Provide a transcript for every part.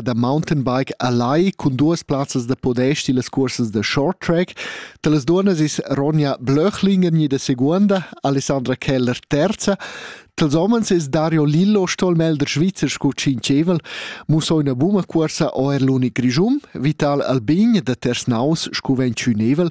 da mountainbike a Lai cun duas plazzas da podest illas cursas da short track. Talas duonas is Ronja Blöchlingen gnida seguonda, Alessandra Keller terza, Tals homens es Dario Lillo stolmelder Schweizer sco tschincevel, musoina buma cuorsa o er l'unic grischum, Vital Albin da Tersnaus sco ventschünevel,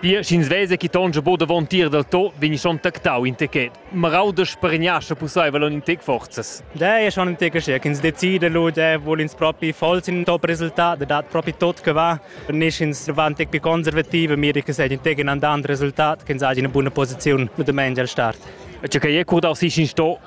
Pia sch'ins vesa che tonscha bod davon tier dal to, vegn schon tactau in techet. Marau da spargniascha pusseivel on in tec forzas. Da è schon in tec scher ch'ins decida lu de vul ins propi vols in top resultat, dat propi tot che va. Nicht ins va ein tec più konservative, mir ich gesagt in tec in andant resultat, ch'ins ha eine buna Position mit dem Angel Start. Cioè che è curd aus sich in sto,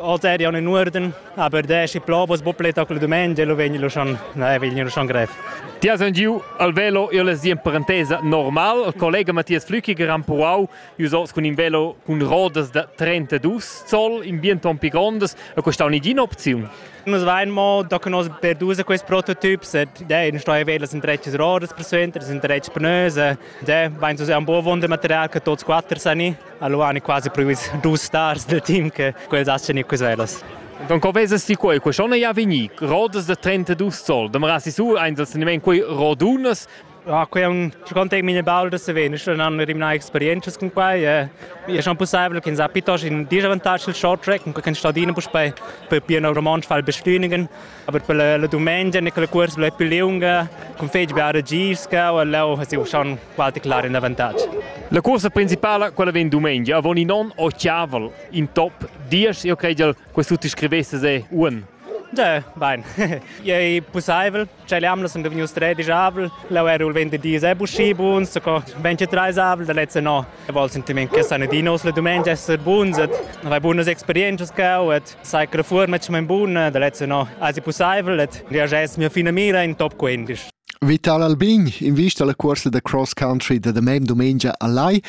Oz eri ja in Urden, aber der ist Plobos Bupletaclo Dumengia, lo vegni schon, nein, vegni schon grev. Ti has giu al velo il in parentesa normal. Il collega Mattias Flückiger ha puau usos cun in velo cun rodas da 32 zoll in bien ton pi grondas. E questa è un'idina opzione. Nus vein mo da conosce per dus questi prototyps, dei non sto a vela sind rechts rodas per suenter, sind rechts pnöse, de vein so un buon wundermaterial che tots quatter sani. Allora hanno quasi previsto due stars del team che quels asciano i queselos. Don co vesas ti quei? Quei schon ja veni. Rodas de 32 sol. Dem rasi su ein das nemen quei rodunas. Ja, quei è un secondo mine baldo se veni, schon hanno rimna experiences con quei. E è schon possibile che sa pitos in disavantage il short track, con stadine per per piano romans fall bestünigen. Aber per la, la dumengia ne quella cuors blei più lunga, con fetg bia regirska o leu ha siu schon qualche clar in avantatg. La cuorsa principala, quella vegn dumengia, avon in on o chiaval, in top, dies, io creiel, questo ti scrivesse se un. Ja, bein. Ei pusseivel, che l'amla sunt vegnius tredisch avel, leu era il 20 dis e buschi buns, so co 23 avel, da letzte no E vol sentiment che san dinos le dumengia esser buns et avai bunas experienzas cau et sai che la fuorma è mein buna da lezza no asi possibel et reages mia fina mira in top 15 Vital Albin invista la cuorsa da cross country da demem dumengia a Lai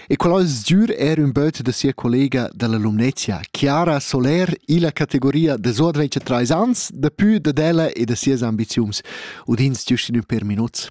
e qual sdür er un böt da sia collega dalla Lumnezia, Chiara Soler, illa categoria de Sodvece trais ans, da pü da della e da sias ambiziums, udins giustin un per minuts.